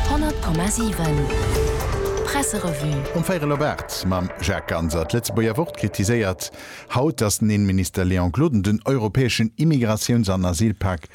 100,7 Presserevue. Um 4 elo Baart mam Jacques Ganser. D'Lëtzebuerger Wort kritiséiert haut, datt den Innenminister Léon Gloden den europäeschen Immigratiouns an Asylpak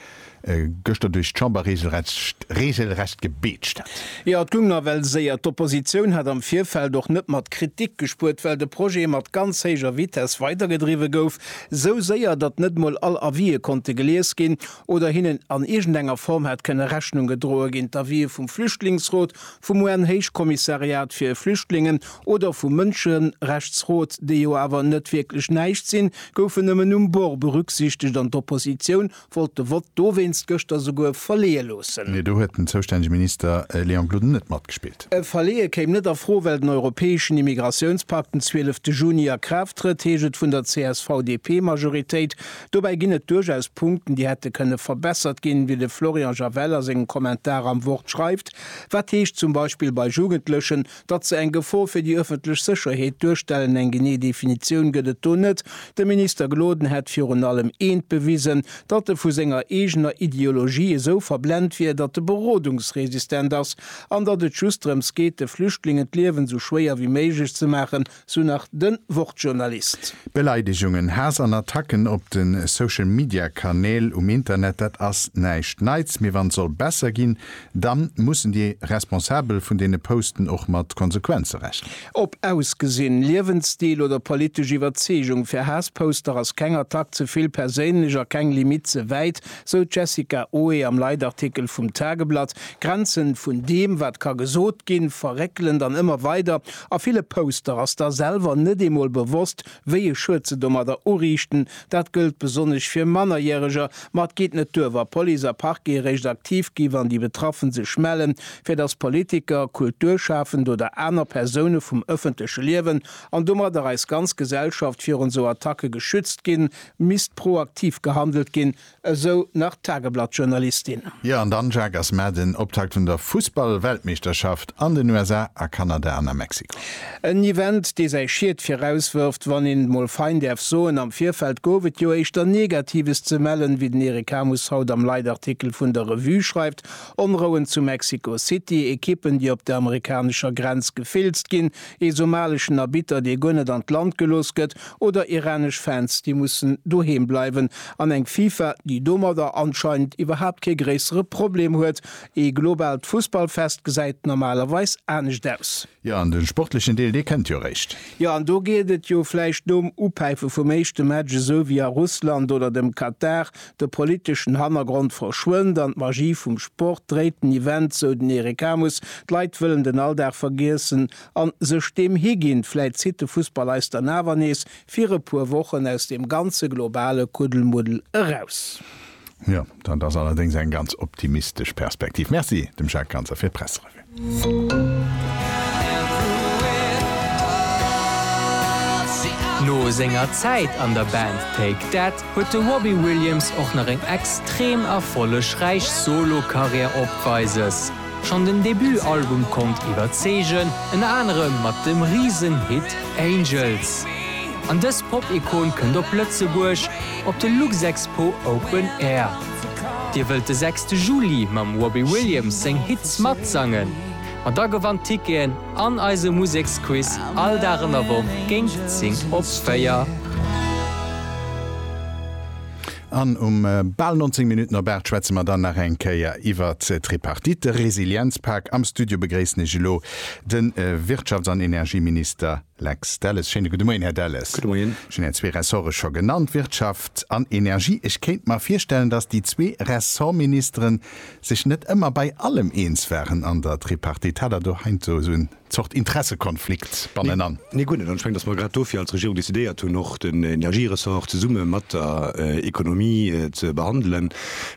gëschter duerch d'Chamber reegelrecht gebeetscht hätt. Jo, et goung nawell séier. D'Oppositioun hat am Virfeld och net mat Kritik gespuert, well de Projet mat ganz héijer Vitess weidergedriwwe gouf. Esou séier, datt net mol all Avisë konnte gelies ginn. oder hinnen an iergendenger Form hätt kënne Rechnung gedroe ginn, d'Avië vum Flüchtlingsrot, vum UN-Héichkommissariat fir Flüchtlingen oder vum Mënscherechtsrot, déi jo awer net wierklech näischt sinn, goufen nëmmen um Bord berücksichtegt an d'Oppositioun wollt de Vott dowéinst gëschter souguer verleeë loossen. Mee do huet den zoustännege Minister Léon Gloden net matgespillt. E Verleeë kéim net a Fro, well den europäeschen Immigratiounspakt den 12 Juni a Kraaft trëtt, heescht et vun der CSV-DP-Majoritéit. Dobäi ginn et duerchaus Punkten, déi hätte kënne verbessert ginn, wéi de Florian Javel a sengem Kommentar am Wort schreift. Wat heescht zum Beispill bei Jugendlechen, datt se eng Gefor fir déi ëffentlech Sécherheet duerstellen? Eng genee Definitioun gëtt et do net. De Minister Gloden hätt virun allem eent bewisen, datt e vu senger eegener Ideologie esou verblent wier, datt e berodungsresistent ass an datt et just drëms geet, de Flüchtlingen d'Liewen esou schwéier wéi méiglech ze maachen. Sou nach den Wortjournalist. Beleidegungen, Haass an Attacken op den Social Media Kanäl um Internet, dat ass näischt Neits, mee wann soll besser ginn, dann mussen déi Responsabel vun deene Posten och mat Konsequenzen rechnen. Op Ausgesinn, Liewensstil oder politesch Iwwerzeegung, fir Haassposter ass keng Attack ze vill perséinlech a keng Limite ze wäit, sou d'Jessica Oe am Leitartikel vum Tageblatt. Grenzen vun deem wat ka gesot ginn, verréckelen dann ëmmer weider. A ville Poster ass da selwer net eemol bewosst, wéi e Schued se domadder uriichten. Dat gëllt besonnesch fir Mannerjäreger. Ma et geet net duer, wa Police a Parquet eréischt aktiv gi wann déi Betraffen sech mellen, fir datt Politiker, Kulturschafend oder aner Persoune vum ëffentleche Liewen, an domadder eis ganz Gesellschaft, virun esou Attacke geschützt ginn, misst proaktiv gehandelt ginn. Esou nach d'Tageblatt-Journalistin. Jo an dann Jacques ass Mä den Optakt vun der Fussball-Weltmeeschterschaft an den USA, a Kanada an a Mexiko. En Event dee säi Schied viraus wërft, wann een et mol fein däerf soen. Am Virfeld gouf et jo éischter Negatives ze mellen, wéi den Eric Hamus haut am Leitartikel vun der Revue schreift, Onrouen zu Mexiko City, Ekippen déi op der amerikanescher Grenz gefilzt ginn, Ee somaleschen Arbitter, dee guer net an d'Land gelooss gëtt, oder iranesch Fans, déi mussen doheem bleiwen, an eng FIFA, déi domadder anscheinend iwwerhaapt kee gréissere Problem huet. Ee globaalt Fussballfest gesäit normalerweis anescht aus. Jo, an den sportlechen Deel, dee kënnt jo eréischt. Jo, an do geet et jo vläicht nom Upäife vum éischte Match esou wéi a Russland oder dem Katar, De politeschen Hannergrond verschwënnt an d'Magie vum Sport dréit den Event, sou den Eric Amus. D'Leit wëllen den Alldag vergiessen a sech deem higinn. Vläit zitt de Fussball eis dann awer nees fir e puer Wochen aus deem ganze globale Kuddelmuddel eraus. Jo, dat ass allerdéngs eng ganz optimistesch Perspektiv. Merci dem Jacques Ganser fir d'Presse. No senger Zäit an der Band Take That huet de Robbie Williams och nach eng extrem erfollegräich Solo-Karriär opweises. Schonn den Debut-Album konnt iwwerzeegen, ënner anerem mat dem Risen-Hit Angels. An dës Pop-Ikon kënnt op Lëtzebuerg op de Luxexpo Open Air. Dir wëllt de sechste Juli mam Robbie Williams seng Hits matsangen? Ma da gewannt Ticketen an eise Museksquiz all Dag an der Woch géint 10 op 4. An um bal 19 Minutten op 8 schwätze mer dann nach eng Kéier iwwer d'Tripartite, de Resilienzpak. Am Studio begréissen ech elo de Wirtschafts an Energieminister Lex Delles, Schéine gudde Moien, Här Delles. Gudde Moien. Ech hunn Är zwee Ressorte scho genannt, Wirtschaft an Energie. Ech kéint mer virstellen, datt déi zwee Ressortministere sech net ëmmer bei allem eens waren an der Tripartite. Hat Der do heiansdo esou eng Zort Interessekonflikt bannenan? Nee, guer net. An ech mengen, datt mer grad dofir als Regierung decidéiert hunn, och den Energieressort zesumme mat der Economie ze behandelen,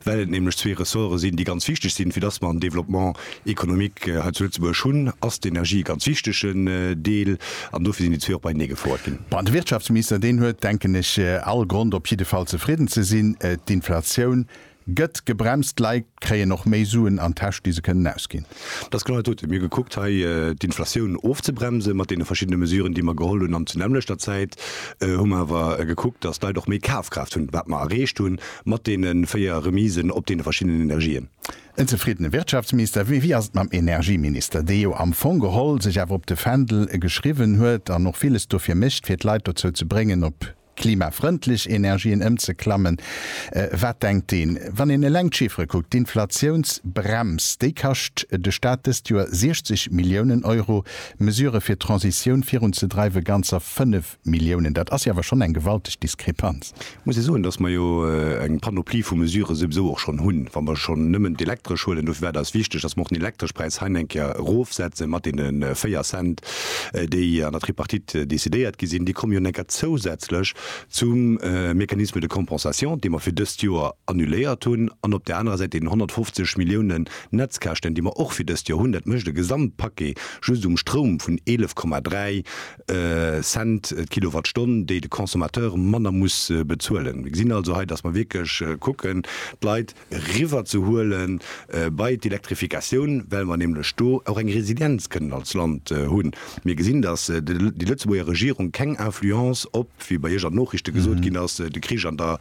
well et nämlech zwee Ressorte sinn, déi ganz wichteg sinn, fir datt mer am Développement économique hei zu Lëtzebuerg hunn, ass d'Energie e ganz wichtegen Deel an dofir sinn déi zwee och beienee gefouert ginn. Bon, de Wirtschaftsminister, deen huet, denken ech, all Grond op jidde Fall zefridden ze sinn. D'Inflatioun gëtt gebremst, d'Leit kréien och méi Suen an d'Täsch, déi se kënnen ausginn. Dat ass genau dat dote. Mir hu gekuckt hei d'Inflatioun ofzebremsen mat deene verschiddene Mesuren, déi mer geholl hunn an zu nämmlechter Zäit hu mer awer gekuckt, datt d'Leit och méi Kafkraaft hunn, wat mer erreecht hu mat deene véier Remisen op deene verschiddenen Energien. En zefriddene Wirtschaftsminister, mee wéi ass et mam Energieminister, dee jo am Fong geholl sech awer op de Fändel geschriwwen huet an och villes dofir mécht, fir d'Leit dozou ze bréngen, op klimafrëndlech Energien ëmzeklammen? Wat denkt deen, wann een eleng d'Chiffere kuckt? D'Inflatiounsbrems, déi kascht de Staat dëst Joer 60 Milliounen Euro, Mesurë fir d'Transitioun virunzedreiwe ganzer 5 Milliounen, dat ass jo awer schonn eng gewalteg Diskrepanz. Ech muss jo soen, dass mer jo eng Panoplie vu Mesurë souwsou och schonn hunn, wa mer schonn nëmmen d'Elektresch huelen. Dofir war et eis wichteg, dass mer och den Elektreschpräis hei eng Kéier erofsetzen, mat deene véier Cent, déi an der Tripartite decidéiert gi sinn. Déi komme jo eng Kéier zousätzlech zum Mécanisme de compensation, dee mer fir dëst Joer annuléiert hunn, an op där anerer Säit deenen 150 Milliounen Netzkäschten, déi mer och fir dëst Joer hunn. Dat mécht e Gesamtpaquet just um Stroum vun 11,3 Cent d'Kilowattstonn, déi de Consommateur manner muss bezuelen. Mir gesinn also hei, datt mer wierklech kucken, d'Leit eriwwerzehuele bei d'Elektrifikatioun, well mer nämlech do och eng Resilienz kënnen als Land hunn. Mir gesinn, datt déi Lëtzebuerger Regierung keng Influence op, wéi bei Iech an den Noriichte gesot ginn ass, de Krich an der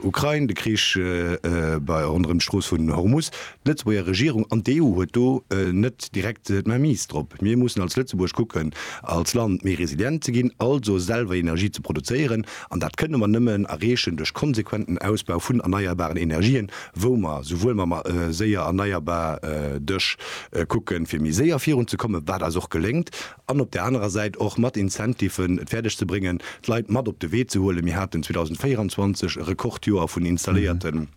Ukrain, de Krich ronderëm d'Strooss vun Hormus, D'Lëtzebuerger Regierung an d'EU huet do net direkt d'Mainmise drop. Mir mussen als Lëtzebuerg kucken, als Land méi resilient ze ginn, also selwer Energie ze produzéieren. An dat kënne mer nëmmen erreechen duerch konsequenten Ausbau vun erneierbaren Energien, wou mer esouwuel mam séier erneierbar Dësch kucken, fir méi séier virun ze kommen, wat eis och geléngt, an op där anerer Säit och mat Incentiven et fäerdeg ze bréngen, d'Leit mat op de Wee ze huelen. Mir haten 2024 e Rekordjoer vun installéierten.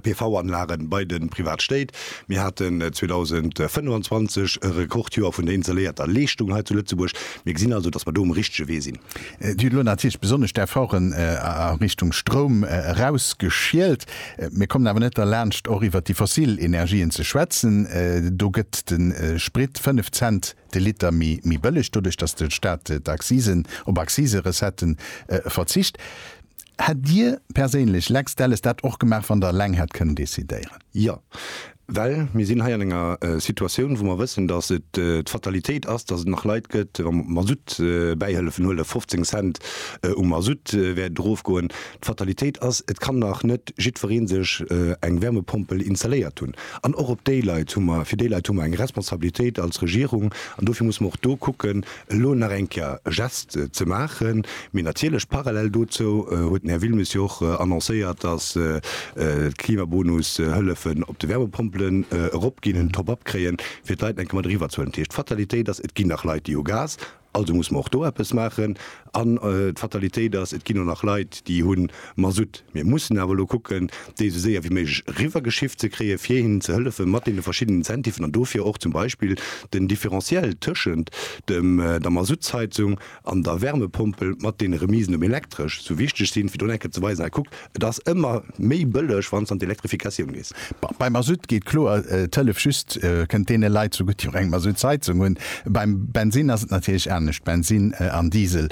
PV-Anlagen bei den Privatstéit. Mir haten 2025 e Rekordjoer vun der installéierter Leeschtung hei zu Lëtzebuerg. Mir gesinn also, dass mer do um richtege Wee sinn. Dir hutt elo natierlech besonnesch d'Efforten a Richtung Stroum erausgeschielt. Mir kommen awer net derlaanscht, och iwwert déi fossil Energien ze schwätzen. Do gëtt de Sprit 5 Cent de Liter méi bëlleg, doduerch dass de Staat d'Accisen, op Accise-Recetten verzicht. Hätt Dir perséinlech, Lex Delles, dat och gemaach, wann Der eleng hätt kënnen decidéieren? Jo, well mir sinn hei an enger Situatioun, wou mer wëssen, datt et d'Fatalitéit ass, datt et nach Leit gëtt, wa mer d'Mazout bäi Hëllefen huelen, 15 Cent um Mazout wäert et erofgoen. D'Fatalitéit ass, et kann nach net jiddweree sech eng Wärmepompel installéiert hunn. An och op déi Leit hu mer, fir déi Leit hu mer eng Responsabilitéit als Regierung an dofir musse mer och do kucken, Elo nach eng Kéier e Gest ze maachen. Mee natierlech, parallel dozou huet den Här Wilmes jo och annoncéiert, dass d'Klimabonus-Hëllefen op de Wärmepompelen eropginn, en Top-up kréien, fir d'Leit eng Kéier mat eriwwerzehuelen. Dat heescht, d'Fatalitéit ass, et ginn nach Leit, déi hu Gas, also muss mer och do eppes maachen. An d'Fatalitéit ass, et ginn och nach Leit, déi hunn Masutt. Mir mussen awer elo kucken, déi esou séier wéi méiglech eriwwergeschifft ze kréien, fir hinnen ze hëllefen mat deene verschiddenen Incentiven an dofir och zum Beispill den Differentiel tëschent dem, der Masuttsheizung an der Wärmepompel mat deene Remisen um Elektresch sou wichteg sinn, fir do nach eng Kéier ze weisen, Hei kuckt, et ass ëmmer méi bëlleg, wann s de an d'Elektrifikatioun gees. Bon, bei Masutt geet kloer d'Hëllef just, kënnt deene Leit zugutt, déi och eng Masutt-Heizung hunn. Beim Bensinn ass et natierlech anescht, Bensinn an Diesel.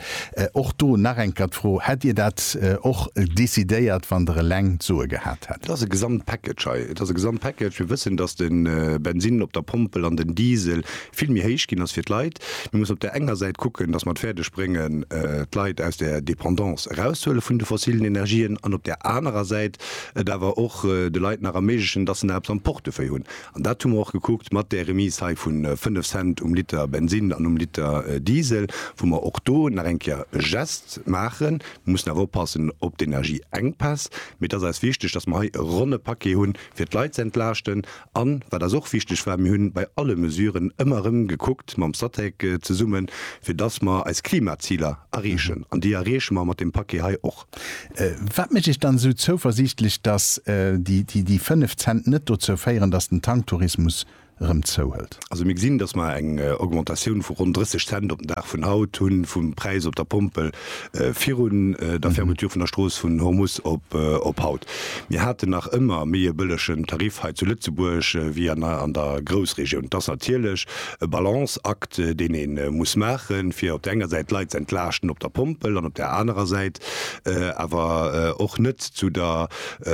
Och do nach eng Kéier d'Fro, Hätt Dir dat och decidéiert, wann Der eleng d'Soe gehat hätt? Et ass e Gesamtpackage hei. Et ass e Gesamtpackage. Mir wëssen, datt de Bensinn op der Pompel an den Diesel vill méi héich ginn ass fir d'Leit. Mir mussen op där enger Säit kucken, datt mer et fäerdeg bréngen, d'Leit aus der Dependance erauszehuele vun de fossilen Energien an op där anerer Säit, et awer och de Leit nach erméiglechen, dass se nach eppes am Portefeuille hunn. An dat hu mer och gekuckt mat där Remise hei vu fënnef Cent um Liter Bensinn an um Liter Diesel, wou mer och do nach eng Kéier e Gest maachen. Mir mussen awer oppassen op d'Energieengpäss, mee et ass eis wichteg, dass mer hei e ronne Paquet hunn, fir d'Leit ze entlaaschten. An wat eis och wichteg war, Mir hunn bei alle Mesuren ëmmer erëm gekuckt, mam Statec zesummen, fir dass mer eis Klimaziler erreechen. An déi erreeche mer mat deem Paquet hei och. Wat mécht Iech dann esou zouversiichtlech, datt déi 5 Cent net dozou féieren, datt den Tanktourismus erëm zouhëlt? Also mir gesinn, datt mer eng Augmentatioun vu ronn 30 Cent op den Dag vun haut hunn, vum Präis op der Pompel virun der Fermeture vun der Strooss vun Hormus op haut. Mir haten nach ëmmer méi e bëllegen Tarif hei zu Lëtzebuerg wéi an der Groussregioun. Et ass natierlech E Balanceakt, deen ee muss maachen, fir op der enger Säit d'Leit z'entlaaschten op der Pompel an op der anerer Säit awer och net zu der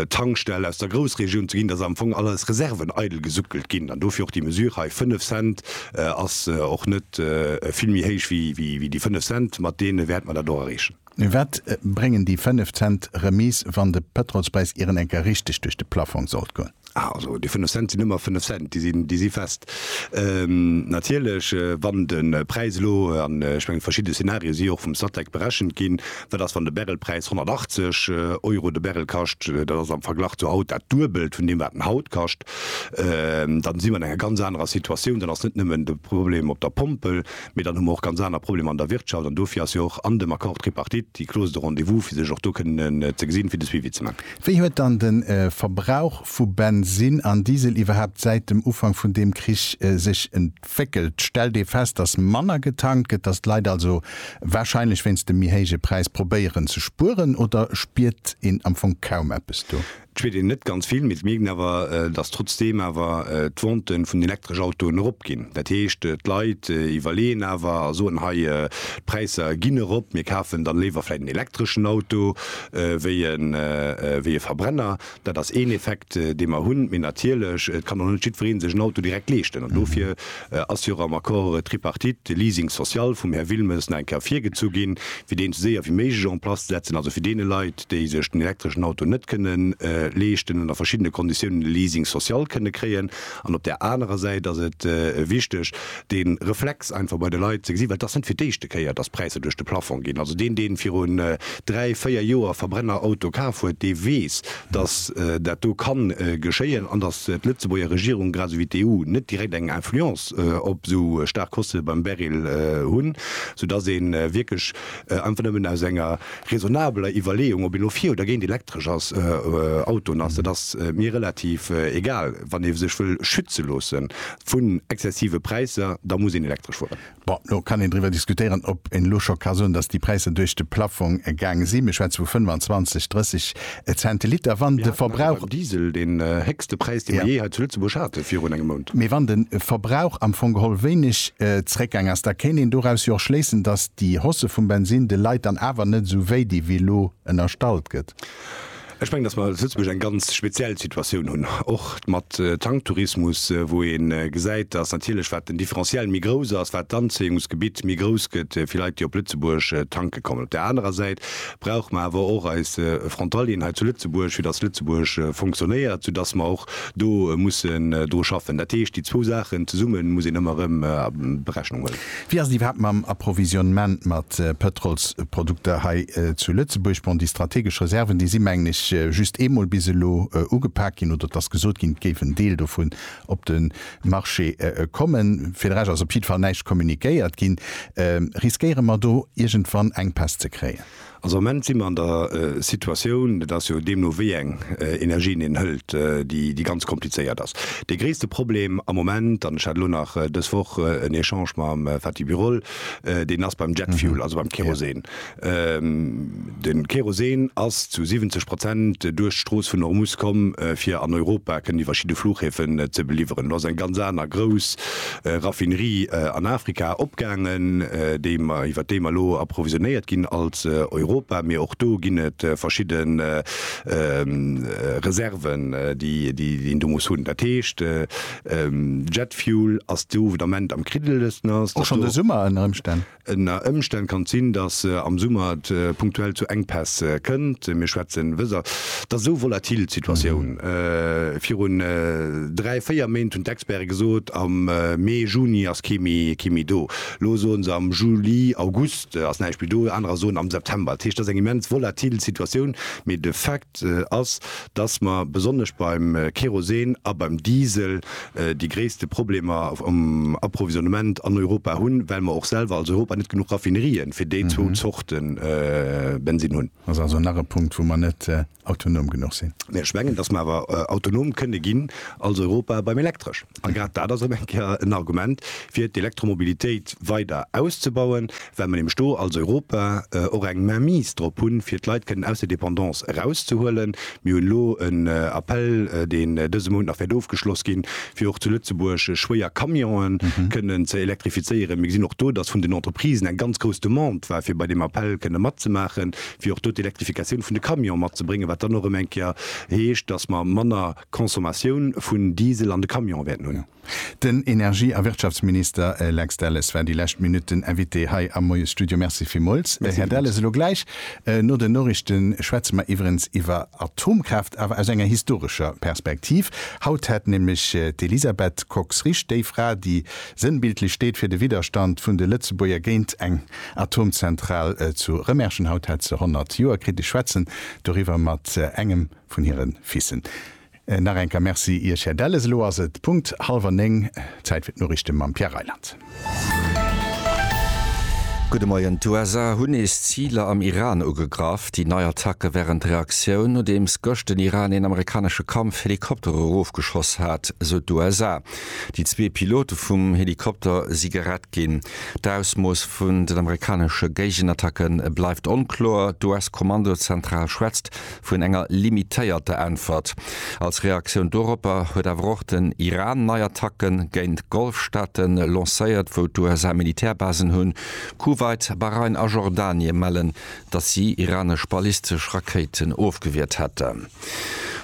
Tankstell aus der Groussregioun ze ginn, dass am Fong all eis Reserven eidel gesuckelt ginn. An dofir och déi Mesure hei, fënnef Cent ass och net vill méi héich wéi déi fënnef Cent, mat deene wäerte mer dat och erreechen. Mee wat bréngen déi 5 Cent Remise wann de Pëtrolspräis ieren eng Kéier richteg duerch de Plafong sollt goen? Also déi 5 Cent sinn ëmmer 5 Cent, déi sinn, déi si fest. Natierlech wann de Präis elo, an ech mengen verschidde Szenarien si jo och vum Statec berechent ginn, dat ass wann de Barrelpräis 180 Euro de Barrel kascht, dat ass am Verglach zu haut dat Duebelt vun deem wat en haut kascht, dann si mer an enger ganz anerer Situatioun, dann ass net nëmmen de Problem op der Pompel, Mee dann hu mer och ganz aner Problemer an der Wirtschaft, an dofir ass jo och an dem Accord tripartite déi Clause de rendez-vous, fir sech och do kënnen ze gesinn, fir de Suivi ze man. Wéi huet dann de Verbrauch vu Bensinn an Diesel iwwerhaapt säit dem Ufank vun deem Krich sech entwéckelt? Stellt ee fest, datt manner getankt gëtt, datt d'Leit also warscheinlech wéinst dem méi héije Präis probéieren ze spueren, oder spiert een am Fong kaum eppes do? Et schwéiert een net ganz vill, mee et mierkt een awer, dass trotzdeem awer d'Vente vun elektresch Autoen erop ginn. Dat heescht, d'Leit iwwerleeën awer a soen, hei, d'Präisser ginn erop, mir kafen dann léiwer vläicht en elektreschen Auto wéi e wéi e Verbrenner. Dat ass een Effekt, dee mer hunn. Mee natierlech, et kann och net jiddweree sech en Auto direkt leeschten. An dofir ass jo och am Accord tripartite de Leasing social vum Här Wilmes nach eng Kéier virgezu ginn, fir deen esou séier wéi méiglech en place ze setzen, also fir deene Leit, déi sech den elektreschen Auto net kënne leeschten, ënner verschiddene Konditiounen e Leasing social kënne kréien. An op där anerer Säit ass et wichteg, dee Reflex einfach bei de Leit ze gesinn, well et ass net fir d'éischte Kéier, dass d'Präisser duerch de Plafong ginn. Also deen, dee virun dräi, véier Joer Verbrennerauto kaf huet, dee weess, dass dat do ka geschéien an dass d'Lëtzebuerger Regierung, grad esou wéi d'EU, net direkt eng Influence op esou staark Koste beim Baril hunn, soudass ee wierklech einfach nëmmen aus enger. raisonnabeler Iwwerleeung, ob ee lo fir oder géint elektresch ass, Autoen ass, dat ass mir relativ egal. Wann ee sech wëll schütze loosse vun exzessive Präisser, da muss een elektresch fueren. Bon, lo kann een driwwer diskutéieren, ob een elo scho ka soen, datt déi Präisser duerch de Plaffong gaange sinn. Mir schwätze vu 25, 30. e Cent Liter, wann de Verbrauch. Beim Diesel deen héchste Präis, dee mer jee hei zu Lëtzebuerg haten, virun engem Mount. Mee wann de Verbrauch am Fong geholl wéineg zréckgaang ass, da kéint een doraus jo och schléissen, dass déi Hausse vum Bensin de Leit dann awer net esou wéi di wéi elo ënnerstallt gëtt. Ech mengen, dass mer zu Lëtzebuerg eng ganz speziell Situatioun hunn, och mat Tanktourismus, wou ee gesäit, dass natierlech wat den Differentiel méi grouss ass, wat d'Anzéiungsgebitt méi grouss gëtt fir Leit, déi op Lëtzebuerg tanke kommen. Op där anerer Säit brauche mer awer och eis Frontalieren hei zu Lëtzebuerg, fir dass Lëtzebuerg funktionéiert, soudass mer och do mussen dru schaffen. Dat heescht, déi zwou Saachen zesumme muss een ëmmer erëm a Berechnung huelen. Wéi ass et iwwerhaapt mam Approvisionnement mat Pëtrolsprodukter hei zu Lëtzebuerg? Bon, déi strategesch Reserven, déi si mengen ech just eemol bis elo ugepak ginn, oder et ass gesot ginn, et géif en Deel dovu op de Marché kommen. Fir de Rescht ass op jiddwer Fall näischt communiquéiert ginn. Riskéiere mer do iergendwann eng Päss ze kréien? Also am Moment si mer an der Situatioun, et ass jo deemno wéi eng Energien een hëlt, déi ganz komplizéiert ass. Dee gréisste Problem am Moment, an ech hat elo nach dës Woch en Echange mam Fatih Birol, deen ass beim Jet Fuel, also beim Kerosen. De Kerosen ass zu 70 Prozent duerch d'Strooss vun Hormuz komm, fir an Europa kënnen iwwer verschidde Fluchhäfen ze beliwweren. Elo ass eng ganz aner grouss Raffinerie an Afrika opgaangen, déi mer, iwwer déi mer elo approvisionnéiert ginn als Europa. Mee och do ginn et verschidde Reserven, déi een do muss hunn. Dat heescht, Jet Fuel ass do, wou den Ament am kriddelegsten ass. Och schonn de Summer ënner Ëmstänn. Ënner Ëmstänn kann et sinn, dass am Summer et punktuell zu Enkpäss kënnt. Mir schwätzen wëser der esou volatil Situatioun. Virun dräi, véier Méint hunn d'Experte gesot, am Mee, Juni ass kee méi do. Elo soe se am Juli, August ass näischt méi do. Anerer soen am September. Dat heescht, dat ass eng immens volatil Situatioun, mee de Fait, ass, dass mer besonnesch beim Kerosen a beim Diesel déi gréisste Problemer um Approvisionnement an Europa hunn, well mer och selwer als Europa net genuch Raffinerien fir déi zwou Zorte Bensinn hunn. Dat ass also nach e Punkt, wou mer net autonom genuch sinn. Mä ech mengen, dass mer awer autonom kënne ginn als Europa beim Elektresch. A grad dat ass erëm eng Kéier en Argument, fir d'Elektromobilitéit weider auszebauen, well mer nämlech do als Europa och eng Mainmise drop hunn, fir d'Leit kënnen aus der Dépendance erauszehuelen. Mir hunn elo en Appell, deen dëse Mount nach wäert ofgeschloss ginn, fir och zu Lëtzebuerg schwéier Camionë kënnen ze elektrifizéieren. Mir gesinn och do, dass vun den Entreprisen eng ganz grouss Demande war, fir bei deem Appell kënnen matzemaachen, fir och do d'Elektrifikatioun vun de Camione matzebréngen, wat dann och erëm eng Kéier heescht, dass mer manner. Consommatioun vun Diesel an de Camionen wäerten hunn. Den Energie a Wirtschaftsminister Lex Delles war déi lescht Minutt den Invité hei am Moiesstudio. Merci villmools, Här Delles. Elo gläich no den Noriichte schwätze mer iwwerens iwwer Atomkraaft, awer aus enger historescher Perspektiv. Haut hätt nämlech d'Elisabeth Kox-Risch, déi Fra, déi sënnbildlech steet fir de Widderstand vun de Lëtzebuerger géint eng Atomzentral zu Remerschen, haut hätt se 100 Joer kritt. Ech schwätzen doriwwer mat engem vun hiren Fissen. Nach eng Kéier Merci Iech Här Delles. Elo ass et Punkt halwer 9, Zäit fir d'Noriichte mam Pierre Reyland. Gudde Moien, D'USA hunn nees Ziler am Iran ugegraff. Déi nei Attacke wären d'Reaktioun, nodeems gëscht den Iran een amerikanesche Kampfhelikopter erofgeschoss hat, sou d'USA. Déi zwee Pilote vum Helikopter si gerett ginn. D'Ausmooss vun den amerikanesche Géigenattacke bleift onkloer. D'US-Kommandozentral schwätzt vun enger limitéierter Äntwert. Als Reaktioun doropper huet awer och den Iran nei Attacke géint Golfstaate lancéiert, wou d'USA Militärbasen hunn. Kuwait, Bahrain a Jordanie mellen, datt si iranesch ballistesch Rakéiten ofgewiert hätten.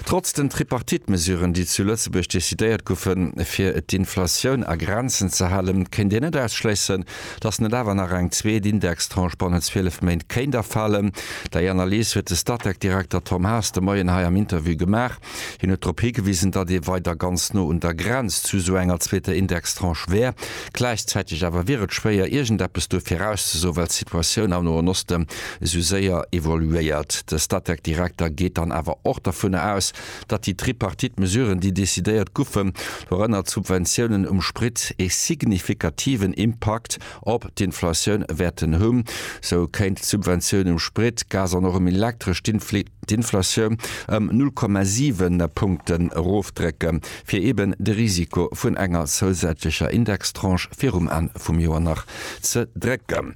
Trotz den Tripartite-Mesuren, déi zu Lëtzebuerg decidéiert goufen, fir d'Inflatioun a Grenzen ze halen, kéint een net ausschléissen, Dass net awer nach eng zweet Indextranche bannent 12 Méint kéint erfalen, déi Analys huet de Statec-Direkter Tom Haas de Moien hei am Interview gemaach. Hien huet drop higewisen, datt ee weider ganz no un der Grenz zu esou enger zweeter Indextranche wär. Gläichzäiteg awer wier et schwéier, iergendeppes do virauszesoen, well d'Situatioun am Noen Osten esou séier evoluéiert. De Statec-Direkter geet dann awer och dovunner aus, datt déi Tripartite Mesuren, déi decidéiert goufen, dorënner d'Subventiounen um Sprit, ee signifikativen Impakt op d'Inflatioun wäerten hunn. Sou kéint d'Subventioun um Sprit, Gas an och um Elektresch d'Inflatioun ëm 0,7 Punkten erofdrécken, fir eben de Risiko vun enger zousätzlecher Indextranche virum Enn vum Joer nach ze drécken.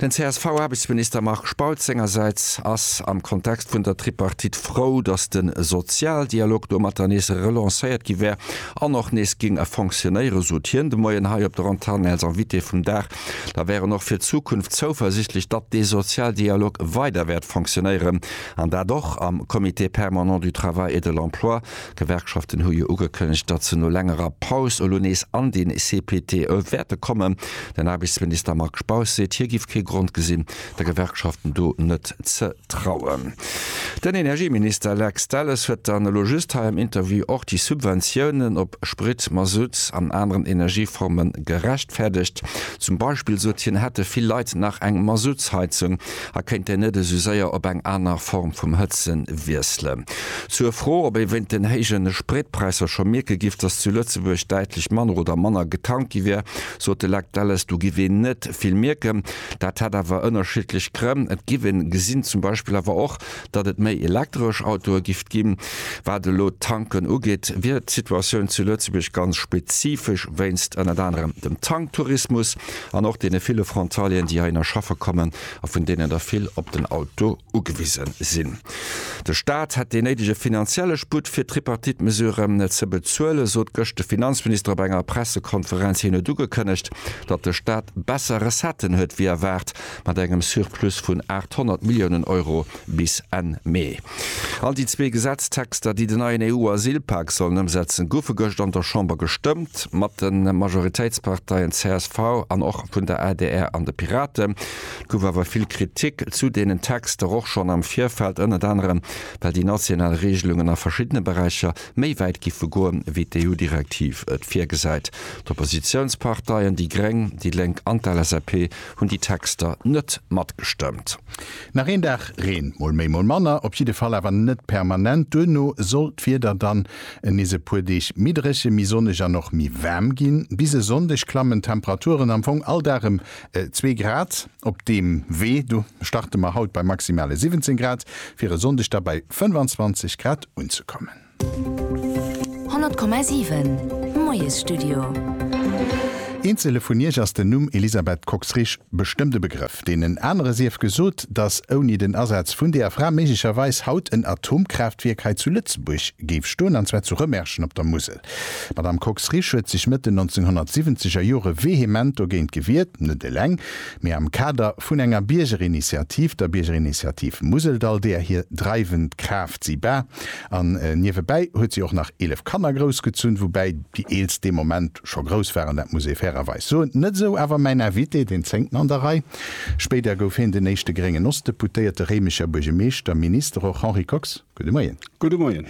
Den CSV-Aarbechtsminister Marc Spautz sengersäits ass am Kontext vun der Tripartite frou, datt de Sozialdialog domatter nees relancéiert gi wär an och nees géing fonctionéieren. Sot hien de Moien hei op der Antenn als Invité vum Dag. Da wär en och fir d'Zukunft zouversichtlech, datt dee Sozialdialog weider wäert fonctionéieren, an dat och am Comité permanent du travail et de l'emploi, D'Gewerkschaften hu jo ugekënnegt, datt se no längerer Paus elo nees an de CPT wäerte kommen. Den Aarbechtsminister Marc Spaus seet, hie géif kee Grond gesinn, de Gewerkschaften do net ze trauen. Den Energieminister Lex Delles huet dann elo just hei am Interview och déi Subventiounen op Sprit, Masutt an aneren Energieforme gerechtfäerdegt. Zum Beispill sot hien, hätte vill Leit nach eng Masuttsheizung, a kéint en net esou séier op eng aner Form vum Hëtze wiesselen. Zur Fro, ob ee wéint den héijen Spritpräisser scho mierke giff, dass zu Lëtzebuerg däitlech manner oder manner getankt gi wier, sot de Lech Delles, do giff een net vill mierken. Dat hätt awer ënnerschiddlech Grënn. Et giff een gesinn, zum Beispill awer och, datt et méi elektresch Autoe giff ginn. Wat elo d'Tanken ugeet, wier d'Situatioun zu Lëtzebuerg ganz spezifesch wéinst ënnert anerem dem Tanktourismus an och deene ville Frontalieren, déi heihinner schaffe kommen a vun deenen der vill op den Auto ugewise sinn. De Staat hätt dee néidege finanzielle Sputt fir d'Tripartite-Mesuren ze bezuelen, sot gëscht de Finanzminister op enger Pressekonferenz. Hien huet ugekënnegt, datt de Staat besser Recetten huet wéi erwaart. mat engem Surplus vun 800 Milliounen Euro bis Enn Mee. All déi zwee Gesetztexter, déi den neien EU-Asylpak sollen ëmsetzen, goufe gëscht an der Chamber gestëmmt, mat de Majoritéitsparteien csv an och vun der adr an de Piraten. Et gouf awer vill Kritik zu deenen Texter, och schonn am Virfeld, ënnert anerem well déi national Reegelungen a verschiddene Beräicher méi wäit géife goen, wéi d'EU-Direktiv et virgesäit. D'Oppositiounsparteien, déi gréng, déi lénk an d'LSAP, hunn déi Texter net matgestëmmt. Nach een Dag Reen, mol méi mol manner, op jidde Fall awer net permanent. Duerno soll d'Wieder dann nees e puer Deeg méi dréche, méi sonneg an och méi waarm ginn. Bis e Sonndeg klammen d'Temperaturen am Fong all Dag ëm zwee Grad. Op deem Wee do starte mer haut bei maximale 17 Grad, fir e Sonndeg da bei 25 Grad unzekommen. 100,7 Moiesstudio. Eenzele vun iech ass den Numm Elisabeth Kox-Risch bestëmmt e Begrëff. Deenen anere sief gesot, datt ouni den Asaz vun deeër Fra méiglecherweis haut en Atomkraaftwierk hei zu Lëtzebuerg géif stoen, an zwar zu Rëmerschen op der Musel. D'Madame Kox-Risch huet sech Mëtt den 1970 er Jore vehement dogéint gewiert, net eleng, mee am Kader vun enger Biergerinitiativ, der Biergerinitiativ Museldall, deeër hir dreiwend Kraaft si war, An niewebäi huet si och nach 11 Kanner groussgezunn, woubäi déi eelst dee Moment scho grouss waren, dat muss ee fairerweis soen. Net esou awer mäin Invité, deen zéngten an der Rei. Spéider gouf hien den éischte gréngen Ostdeputéierte, Réimecher Buergemeeschter, Minister och. Henri Kox, gudde Moien. Gudde Moien.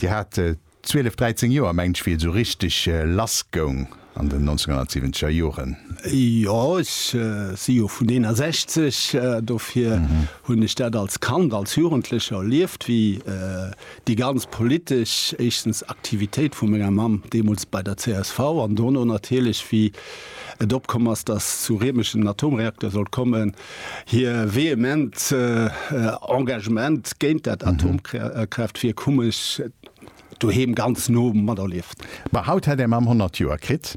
Dir hat 12, 13 Joer, mengt ech, wéi et esou richteg lassgoung. an den 1970 er Joren? Jo, ech si jo vun 61, dofir hunn ech dat als Kand, als Jugendlecher erlieft, wéi déi ganz politesch, éischstens Aktivitéit vu menger Mamm deemools bei der csv an dono natierlech wéi et opkomm ass, datt zu Riemech en Atomreakter sollt kommen, hir vehement Engagement géint dat Atomkraaftwierk hu mech, doheem ganz no materlieft. Ma haut hätt är Mamm 100 Joer kritt.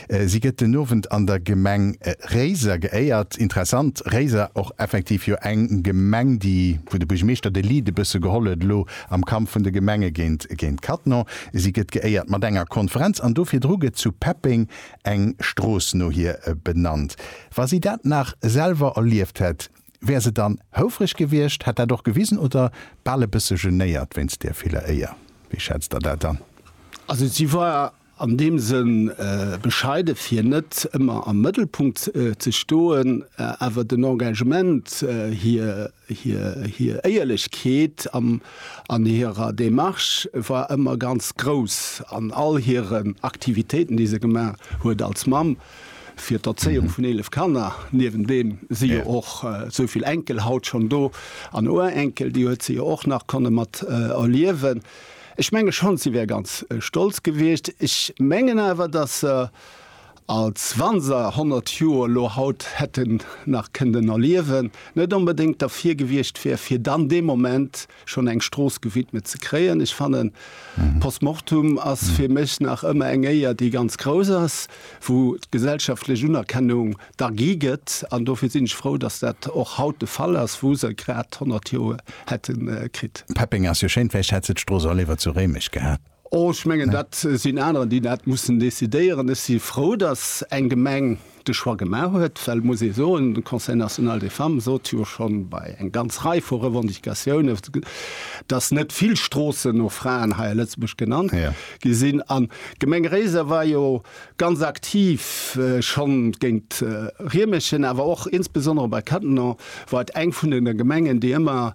Si gëtt den Owend an der Gemeng Réiser geéiert. Interessant, Réiser och effektiv jo eng Gemeng, déi, wou de Buergermeeschter de Lead e bësse geholl huet elo am Kampf vun de Gemenge géint Cattenom. Si gëtt geéiert mat enger Konferenz an do virdru gëtt zu Peppeng eng Strooss no hir benannt. Wa si dat nach selwer erlieft hätt! Wär se dann houfreg gewiescht, hätt dat och gewisen oder bal e bësse genéiert wéinst där viller Éier? Wéi schätzt Der dat an? Also si war an deem Sënn bescheide fir net ëmmer am Mëttelpunkt ze stoen, awer den Engagement, hir Éierlechkeet an hirer Demarche war ëmmer ganz grouss an all hiren Aktivitéiten, déi se gemaach huet als Mamm. fir d'Erzéiung vun 11 Kanner, niewent deem si jo och esou vill Enkel haut schonn do an Urenkel, déi huet se jo och nach konne mat erliewen. Ech menge schonn, si wär ganz stolz gewiescht. Ech mengen awer, datt se, als wa se 100 Joer elo haut hätten nach kënnten erliewen, net onbedéngt derfir gewiescht wär, fir dann dee Moment schonn eng Strooss gewidmet ze kréien. Ech fannen, Post Mortum ass fir mech nach ëmmer eng Éier, déi ganz grouss ass, wou d'gesellschaftlech Unerkennung da gi gëtt. An dofir sinn ech frou, datt dat och haut de Fall ass, wou se grad 100 Joer hätte kritt. Peppeng ass jo schéin, vläicht hätt se d'Strooss och léiwer zu Réimech gehat? Oh, ech mengen, dat sinn anerer, déi dat mussen decidéieren. Ech si frou, datt eng Gemeng de Choix gemaach huet, well et muss ee soen, de Conseil national des femmes sot jo scho bei eng ganz Rei vu Revendicatiounen, datt net vill Stroossen no Fraen hei a Lëtzebuerg genannt gi sinn. An d'Gemeng Réiser war jo Ganz aktiv schonn géint Riemerschen, awer och insbesondere bei Cattenom war et eng vun den Gemengen, déi ëmmer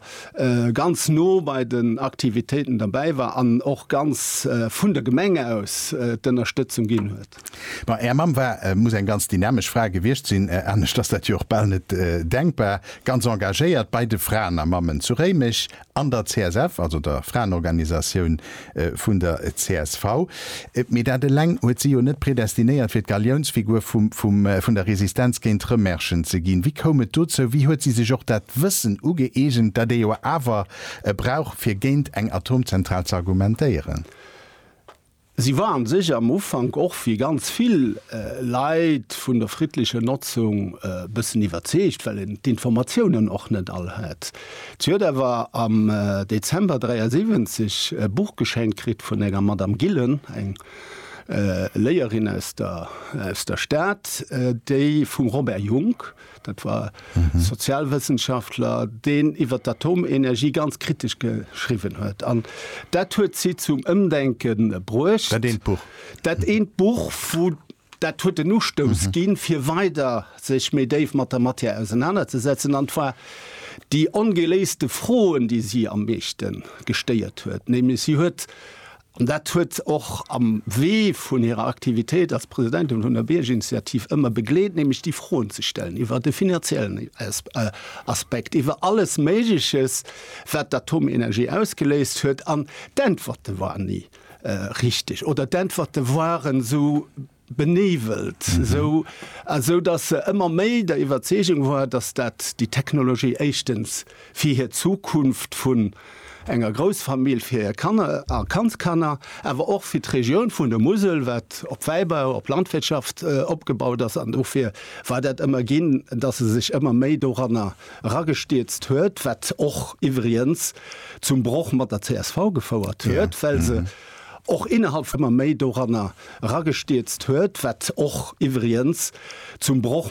ganz no bei den Aktivitéiten derbäi war an och ganz vun der Gemeng aus d'Ënnerstëtzung ginn huet. Bon, Är Mamm war, muss eng ganz dynamesch Fra gewiescht sinn, anescht ass dat jo och bal net denkbar, ganz engagéiert bei de Fraen a Mammen zu Réimech An der CSF, also der Fraenorganisatioun vun der csv. Mee dat eleng huet si jo net predestinéiert, fir d'Galiounsfigur vum der Resistenz géint Rëmerschen ze ginn. Wéi koum et dozou? Wéi huet si sech och dat Wëssen ugëeegent, dat ee jo awer brauch, fir géint eng Atomzentral z'argumentéieren? Si war an sech am Ufank och wéi ganz vill Leit vun der friddlecher Notzung e bëssen iwwerzeegt, well en d'Informatiounen och net all hat. Si huet awer am Dezember 73 e Buch geschenkt kritt vun enger Madame Gillen, eng Léierin aus der Stad, déi vum Robert Jungk, Dat war Sozialwëssenschaftler, deen iwwer d'Atomenergie ganz kritesch geschriwwen huet. An dat huet si zum Ëmdenke bruecht. Dat eent Buch. Dat eent Buch, wou dat huet den Ustouss ginn, fir weider sech méi déif mat der Matière ausenanerzesetzen. An et war déi ongeléiste Froen, déi si am meeschte gestéiert huet. Nämlech si huet An dat huet och am Wee vun hirer Aktivitéit als Presidentin vun der Biergerinitiativ ëmmer begleet, nämlech déi Froen ze stellen iwwer de finanziellen Aspekt, iwwer alles Méigleches, wat d'Atomenergie ausgeléist huet. An d'Äntwerte waren ni richteg oder d'Äntwerte waren esou, benévelt, esou esou datt se ëmmer méi der Iwwerzeegung war, datt dat déi Technologie éischtens fir hir Zukunft vun enger Groussfamill, fir hir Kanner a Kandskanner, awer och fir d'Regioun vun der Musel, wat op Wäibau, op Landwirtschaft opgebaut ass. An dofir war dat ëmmer ginn, datt e sech ëmmer méi doranner eragestierzt huet, wat och iwwriens zum Broch mat der csv gefouert huet, well se och innerhalb vum ëmmer méi doranner eragestierzt huet, wat och iwwriens zum Broch